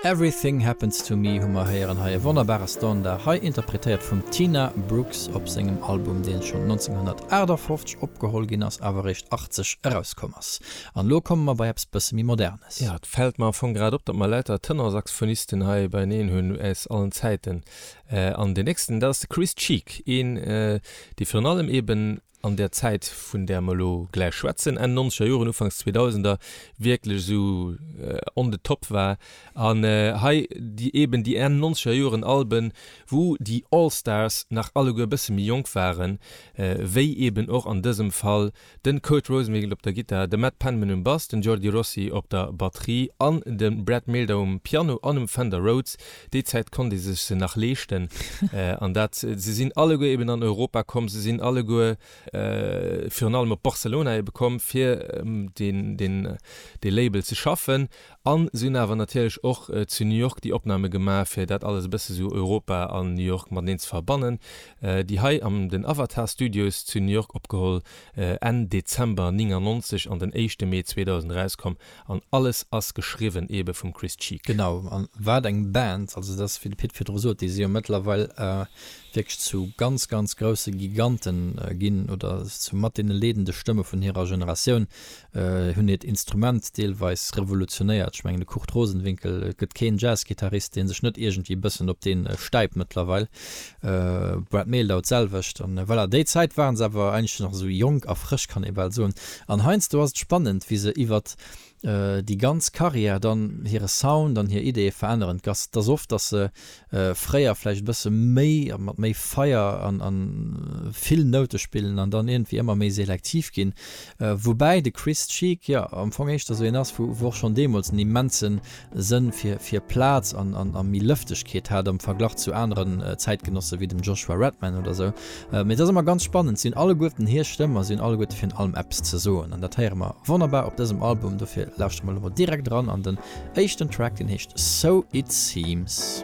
Everything Happens to Me hu mer héieren hei, e wonnerbare Standard, hei interpretéiert vum Tina Brooks op sengem Album, deen schonn 1958 opgeholl ginn ass, awer eréischt 80 erauskomm ass. An elo komme mer bei eppes bësse méi Modernes. Jo, et fält mer am Fong grad op, datt mer lauter Tenorsaxophonisten hei beieneen hunn aus allen Zäiten. An deen nächsten, dat ass de Chris Cheek, een, dee virun allem eeben an där Zäit, vun där mer elo gläich schwätzen, Enn nonzeger Joren, Ufanks Zweedausender, wierklech esou on the top war. An hei déi eeben déi Enn nonzeger Joren Alben, wou déi All Stars nach alleguer e bësse méi jonk waren, wéi eeben och an dësem Fall de Kurt Rosenwinkel op der Gittar, de Matt Penman um Bass, den Jordi Rossi op der Batterie an de Brad Mehldau um Piano an um Fender Rhodes. Déi Zäit konnt ee sech se nach leeschten. An dat, se sinn alleguer eben an Europa komm, se sinn alleguer virun allem op Barcelona ebe komm, fir dee Label ze schaffen. A se hunn awer natierlech och zu New York déi Opname gemaach, fir dat alles e bësse sou Europa an New York mateneen ze verbannen. Déi hei an den Avatar Studios zu New York opgeholl, Enn Dezember 1999 an den éischte Mee 2000 erauskomm. An alles ass geschriwwen ebe vum Chris Cheek. Genau, a wat eng Band! Also et ass wéi de Pit virdru sot, déi si jo mëttlerweil wierklech zu ganz, ganz grousse Gigante ginn oder zu mat deene leedende Stëmme vun hirer Generatioun. Hunn hiert Instrument deelweis revolutionéiert. Ech mengen de Kurt Rosenwinkel, et gëtt keen Jazzgittarist, dee sech net iergendwéi e bëssen op dee stäipt mëttlerweil. Brad Mehldau, D'selwecht. An voilà, déi Zäit waren se awer eigentlech nach esou jonk a frësch, kann ee bal soen. An heiansdo ass et spannend, wéi se iwwert déi ganz Carrière dann hire Sound an hir Ideeë veränneren. D'Gast ass oft, datt se fréier vläicht e bësse méi a mat méi Feier a vill Noute spillen an dann iergendwéi ëmmer méi selektiv ginn. Woubäi de Chris Cheek jo am Fong éischter esou een ass, wou och schonn deemools en immensen Sënn fir fir Plaz an an a méi Lëftegkeet hat am Verglach zu aneren Zäitgenosse wéi dem Joshua Redman oder sou. Mee et ass ëmmer ganz spannend, si hunn alleguerten hir Stëmm a si hunn alleguerte virun allem eppes ze soen. An dat héiere mer wonnerbar op dësem Album, dofir lauschtere mer elo mol direkt eran an den éischten Track, deen heescht So It Seems.